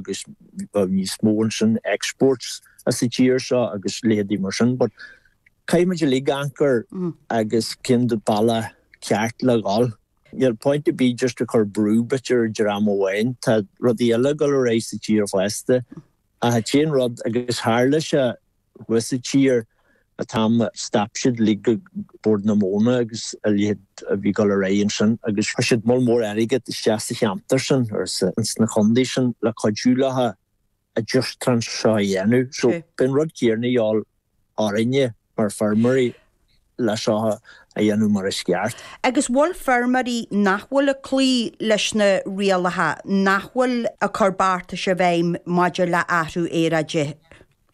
agus bheadh níos mó ansin exports as an tír seo agus leithéidí mar sin but caithfidh muid uilig amharc air agus cén bealach ceart le dhul. Níl point ar bith just ag cur brú duit ar an dream amháin, tá rudaí eile ag dul ar aghaidh sa tír fosta ach is é an rud agus tharla sé thuas i tír an t-am a stop siad uilig ag Bord na Móna agus a leithéid a bhí dul ar aghaidh ansin agus chuir siad moll mór airgead isteach sa cheantar sin agus ins na condaetha sin le cuidiú leofa an t-aistriú seo a dhéanamh so beidh an rud céarna a dhíobháil orainne mar feirmeoirí le seo a dhéanamh mar is ceart. Agus bhfuil feirmeoirí nach bhfuil ag cloí leis na rialacha, nach bhfuil ag cur beartais i bhfeidhm maidir le athrú aeráide?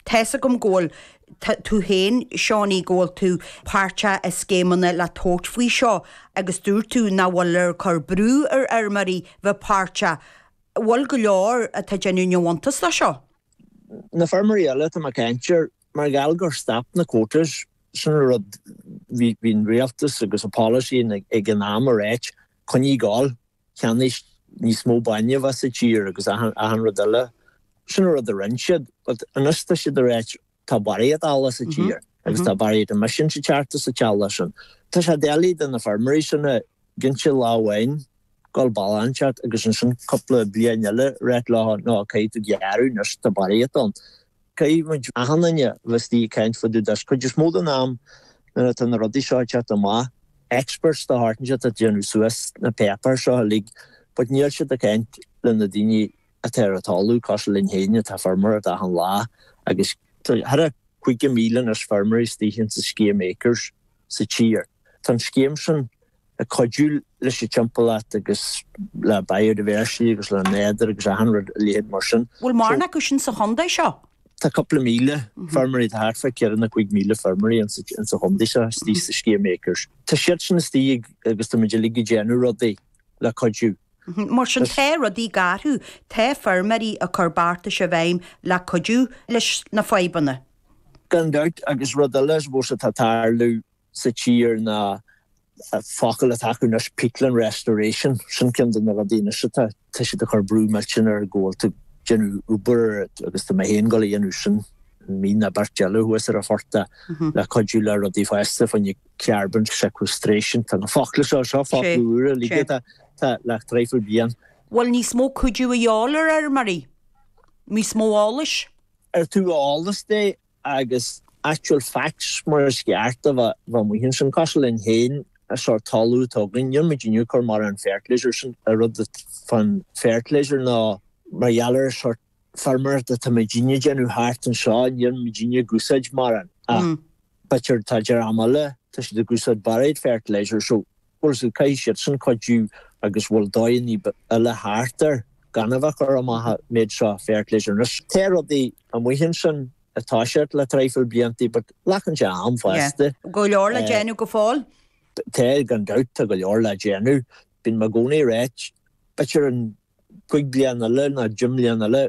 Tá's agam go bhfuil tú féin, Seánie, go bhfuil tú páirteach i scéimeanna le tabhairt faoi seo agus dúirt tú nach bhfuiltear ag cur brú ar fheirmeoirí bheith páirteach. Bhfuil go leor atá déanamh neamhiontas de seo? Na feirmeoirí eile atá mé caint air, mar gheall gur stop na quotas, sin an rud bhí an rialtas agus a policy ag an am ag ráit, coinnigh ag gabháil. cheannais níos mó bainne amach as an tír agus achan rud eile. Sin an rud a rinne siad but anois tá siad ag ráit tá barraíocht eallaigh sa tír agus tá barraíocht emissions ag teacht as an t-eallach sin. Tá sé doiligh do na feirmeoirí sin ag inse lá amháin dhul bealach inteacht agus ansin cúpla bliain eile ag ráit leo no caithfidh tú gearradh anois tá barraíocht ann. Caithfidh muid, achan duine, a bheith istigh ag caint fá dtaobh de is cuid is mó den am nuair atá na rudaí seo ag teacht amach. Experts de shórt inteacht atá ag déanamh suas na páipéir seo uilig but níl siad ag caint le na daoine atá ar an talamh, cosúil linn fhéin atá ag feirmeoireacht achan lá agus tá thar a 50,000 anois feirmeoirí istigh ins an scéim Acres. sa tír. Tá an scéim sin ag cuidiú leis an timpeallacht agus le biodiversity agus le nádúr agus achan rud a leithéid mar sin. Bhfuil mórán acu sin sa chondae seo? Tá cúpla míle feirmeoirí, tá thart fá ceithre nó cúig míle feirmeoirí ins sa chondae seo istigh sa scéim acres. Tá siad sin istigh agus tá muid uilig ag déanamh rudaí le cuidiú. Mar sin tá rudaí ag athrú, tá feirmeoirí ag cur beartais i bhfeidhm le cuidiú leis na fadhbanna. Gan dabht, agus rud eile is mó atá ag tarlú sa tír na focla atá acu anois, peatland restoration, sin ceann de na rudaí anois atá, tá siad ag cur brú millteanach air go bhfuil tú ag déanamh obair agus tá mé féin ag dul a dhéanamh sin, mí nó beirt eile thuas ar an phortach le cuidiú le rudaí fosta faoin carbon sequestration, tá na focla seo, seo focla úra uilig atá le traidhfil bliain. Bhfuil níos mó cuidiú a dhíobháil ar fheirmeoirí? Níos mó eolais? ar tabhair eolas dóibh agus actual facts mar is ceart a bheith amuigh ansin. Cosúil linn féin sórt talamh atá againn. Níl muidinne ag cur mar an fertilizer sin ar rud an fertilizer nó mar gheall ar an sórt feirmeoireacht atá muidinne déanamh thart anseo níl muidinne ag úsáid mar an ach b'fhéidir tá dream eile tá siad ag úsáid barraíocht fertilizer so Bhfuil a fhios agat, caithfidh siadsan cuidiú agus bhfuil dóigheannaí eile thart air gan a bheith ag cur amach an méid seo fertilizer. Anois tá rudaí amuigh ansin atá thart le traidhfil bliantaí but glacann sé am fosta. Go leor le déanamh go fóill. Tá, gan dabht, tá go leor le déanamh. Bíonn mé i gcónaí ag ráit, b'fhéidir i gcúig bliain eile nó deich mbliain eile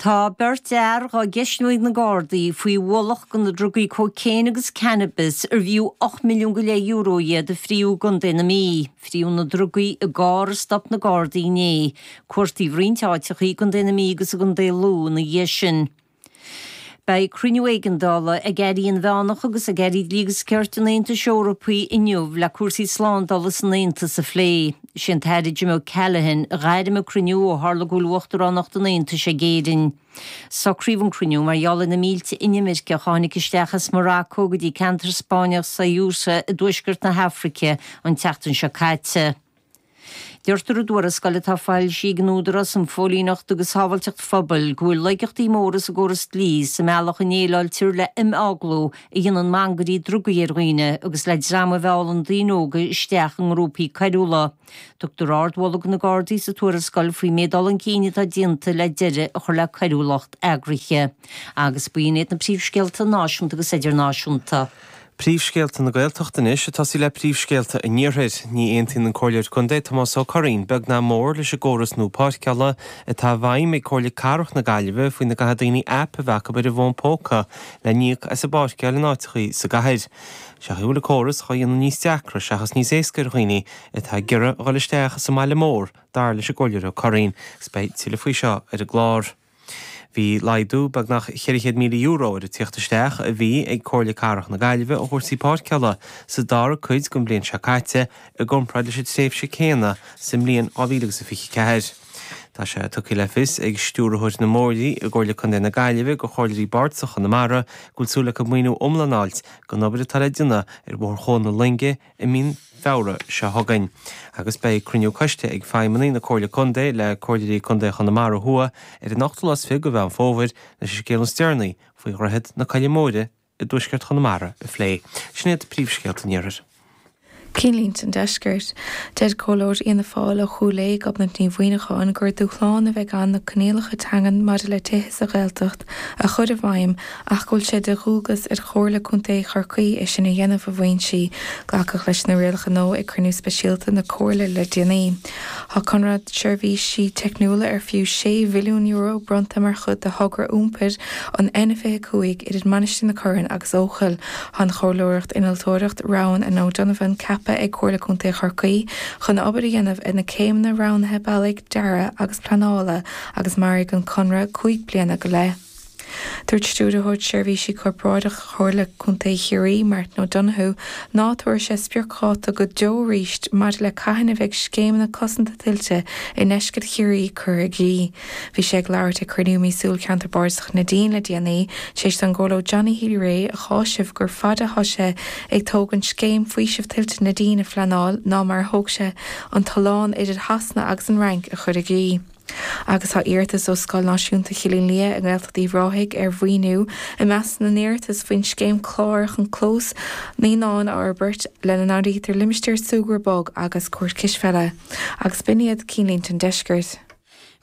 Tá beirt fhear dhá gceistniú ag na Gardaí faoi bhalach de na drugaí cóicéin agus cannabis arbh fhiú ocht milliún go leith euro é a fríothadh i gContae na Mí, fríothadh na drugaí i gcarr a stop na Gardaí inné, cuartaíodh roinnt áiteachaí i gcontae na Mí agus i gcontae Lú ina dhiaidh sin. Beidh cruinniú éigeandála ag Airí Inmheánacha agus ag Airí Dlí agus Cirt an Aontais Eorpaigh inniu le cúrsaí slándála san Aontas a phlé. Is é an tAire Jim O'Callaghan a ghairm an cruinniú ó tharla go bhfuil Uachtaránacht an Aontais ag Éirinn. Socraíodh an cruinniú mar gheall ar na mílte inimirceach a tháinig isteach as Maracó go dtí ceantar Spáinneach Ceuta i dtuaisceart na hAfraice an tseachtain seo caite. Deirtear i dtuarascáil atá foilsithe ag an Údarás um Phóilíneacht agus Shábháilteacht Phobail go bhfuil laigeachtaí móra sa gcóras dlí sa mbealach a ndéileáiltear le himeaglú a dhéanann mangairí drugaí ar dhaoine agus le dream a mheallann daoine óga isteach i ngrúpaí coiriúla. Tugtar ardmholadh do na Gardaí sa tuarascáil faoin méid dul chun cinn atá déanta le deireadh a chur le coiriúlacht eagraithe. Agus b'in iad na príomhscéalta náisiúnta agus idirnáisiúnta. Príomhscéalta na Gaeltachta anois ag tosaí le príomhscéalta an iarthair. Ní aontaíonn an Comhairleoir Contae Tomás Ó Curraoin beag ná mór leis an gcóras nua páirceála atá i bhfeidhm ag Comhairle Cathrach na Gaillimhe faoina gcaithfidh daoine aip a bheith acu ar a bhfón póca le híoc as a bpáirceáil in áiteachaí sa gcathair. Is amhlaidh go bhfuil an córas dhá dhéanamh níos deacra seachas níos éasca ar dhaoine atá ag iarraidh a dhul isteach sa mbaile mór dar leis an gComhairleoir Ó Curraoin. Is beidh tuilleadh faoi seo ar an gclár. Bhí laghdú beagnach €400,000 ar an tíocht isteach a bhí ag Comhairle Cathrach na Gaillimhe ó chúrsaí páirceála sa dara cuid den bhliain seo caite i gcomparáid leis an tréimhse céanna sa mbliain 2024. Tá sé tugtha le fios ag Stiúrthóir na mBóithre i gComhairle Contae na Gaillimhe do chomhairleoirí bardasacha Chonamara go bhfuil súil acu maoiniú iomlán a fháil don obair atá le déanamh ar Bhóthar Chuan na Loinge i mí Feabhra seo chugainn agus beidh cruinniú coiste ag feidhmeannaigh na Comhairle Contae le Comhairleoirí Contae Chonamara Thuaidh ar an 28ú de Mheán Fómhair leis an scéal is deireanaí faoi Dhroichead na Coille Móire i dtuaisceart Chonamara a phlé. Sin iad príomhscéalta an iarthair. Cinnlínte an deiscirt. Deir Comhairleoir Fhianna Fáil ó Chúil Aodha, Gobnait Ní Mhuíneacháin, gur dúshlán a bheidh ann na coinníollacha teangan maidir le tithe sa Ghaeltacht, a chur i bhfeidhm ach go bhfuil sé de dhualgas ar Chomhairle Contae Chorcaí é sin a dhéanamh i bhfoinsí. Glacadh leis na rialacha nua ag cruinniú speisialta na Comhairle le déanaí. Tá conradh seirbhísí teicniúla ar fiú €6 mhilliún bronnta mar chuid de thogra iompair an N25 idir Mainistir na Corann agus Eochaill. Tá an chomhairleoireacht Innealtóireacht Roughan and O'Donovan ceaptha ag Comhairle Contae Chorcaí chun obair a dhéanamh ar na céimeanna roghnaithe bealaigh, dearaidh agus pleanála, agus mairfidh an conradh cúig bliana go leith. Dúirt Stiúrthóir Seirbhísí Corparáideacha Chomhairle Contae Chiarraí, Martin O'Donoghue, ná tabharfaidh sé spriocdháta go deo arís maidir le cathain a bheidh scéimeanna cosanta tuilte i ndeisceart Chiarraí curtha i gcrích. Bhí sé ag labhairt ag cruinniú míosúil Cheantar Bardasach Neidín le déanaí, tar éis don gComhairleoir Johnny Healy-Rae a chásamh gur faide atá sé ag tógaint scéim faoisimh tuilte Neidín a phleanáil ná mar a thóg sé an tollán idir Shasana agus an Fhrainc a chur i gcrích. Agus tá iarratas ó Scoil Náisiúnta Chillín Liath i nGaeltacht Uíbh Ráthaigh ar mhaoiniú i measc na n-iarratas faoin scéim CLÁR chun clós naíonáin a fhorbairt, lena n-áirítear limistéar súgradh bog agus cúirt cispheile. Agus b'in iad Cinnlínte an Deiscirt.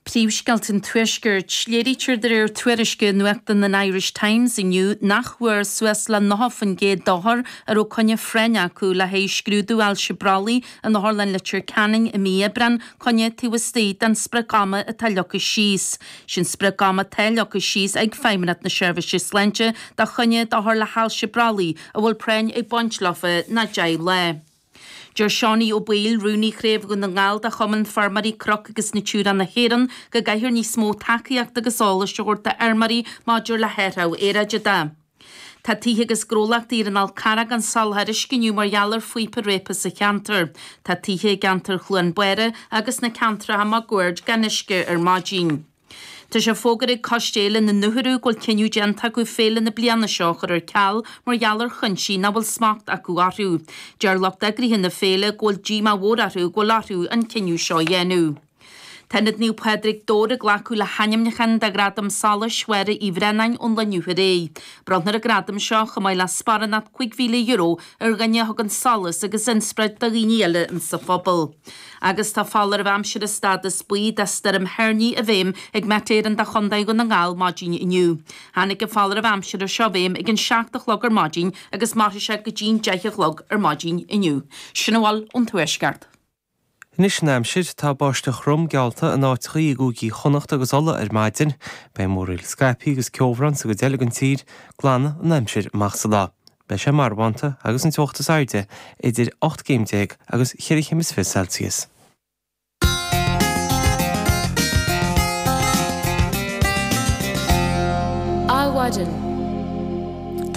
Príomhscéalta an Tuaiscirt. Léirítear de réir tuairisc i nuachtán an Irish Times inniu nach bhfuair suas le 90% d'othair a raibh coinne phráinne acu le haghaidh scrúdú ailse brollaigh in Otharlann Leitir Ceanainn i mí Aibreáin, coinne taobh istigh den sprioc ama atá leagtha síos. Sé an sprioc ama atá leagtha síos ag Feidhmeannacht na Seirbhísí Sláinte do choinne d'othair le hailse brollaigh a bhfuil práinn ag baint leofa ná 10 lá. Deir Seánie Ó Baoill, Rúnaí Chraobh Dhún na nGall de Chumann Feirmeoirí Cnoc agus Natura na hÉireann, go gcaithfear níos mó tacaíochta agus eolais a thabhairt d'fheirmeoirí maidir le hathrú aeráide. Tá tithe agus gnólachtaí ar an Fhál Carrach gan soláthar uisce inniu mar gheall ar phíopa réabtha sa cheantar. Tá tithe i gceantar Chluain Báire agus sna ceantracha máguaird gan uisce ar maidin. Tá sé fógartha ag Coiste Fhéile na nUthuradh go bhfuil cinneadh déanta acu féile na bliana seo a chur ar ceal mar gheall ar chuinsí nach bhfuil smacht acu orthu. Deir lucht eagraithe na féile go bhfuil díomá mhór orthu go bhfuil orthu an cinneadh seo a dhéanamh. Tá Ionad Naomh Pádraig, Dobhar ag glacadh le hainmniúcháin do Ghradam Solais Mháire Uí Bhraonáin ón lá inniu ar aghaidh. Bronnfar an gradam seo, chomh maith le sparánacht €5,000, ar dhuine a thugann solas agus inspioráid do dhaoine eile sa phobal. Agus tá foláireamh aimsire stádas buí do stoirm thoirní i bhfeidhm ag Met Éireann do Chondae Dhún na nGall maidin inniu. Tháinig an foláireamh aimsire seo i bhfeidhm ag an 7 a chlog ar maidin agus mairfidh sé go dtí'n 10 a chlog ar maidin inniu. Sin a bhfuil ón Tuaisceart. Anois an aimsir, tá báisteach throm geallta in áiteachaí i gCúigí Chonnacht agus Uladh ar maidin. Beidh múraíl scaipthe agus ceobhrán sa gcuid eile den tír. Glanfaidh an aimsir amach sa lá. Beidh sé marbhánta agus an teocht is airde idir ocht gcéim déag agus cheithre chéim is fiche Celsius. Adhmhaidin.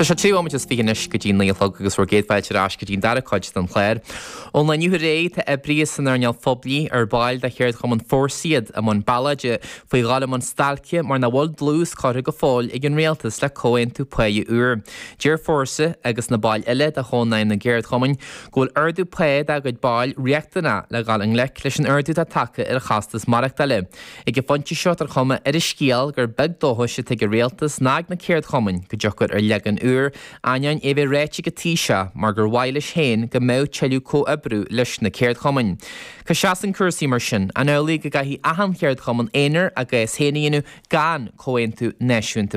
Tá sé trí nóiméad is fiche anois go dtí naoi a chlog agus bhur gcéad fáilte ar ais go dtí an dara cuid den chlár. Ón lá inné, tá oibrithe san earnáil phoiblí, ar baill de Cheardchumann Fórsa iad, i mbun bealáide faoi dhul i mbun stailce mar nach bhfuil dlús curtha go fóill ag an rialtas le comhaontú pá úr. Deir Fórsa, agus na baill eile de Chónáidhm na gCeardchumann, go bhfuil ardú pá dá gcuid ball riachtanach le dhul i ngleic leis an ardú atá tagtha ar chostas maireachtála. Ag an phointe seo tá an chuma ar an scéal gur beag dóchas atá ag an rialtas ná ag na ceardchumainn go dtiocfar ar leagan úr Ainneoin é bheith ráite ag an Taoiseach gur mhaith leis féin go mbeadh tuilleadh comhoibriú leis na ceardchumainn. Cá seasann cúrsaí mar sin? An amhlaidh go gcaithfidh achan ceardchumann aonair a gcás féin a dhéanamh gan Comhaontú Náisiúnta?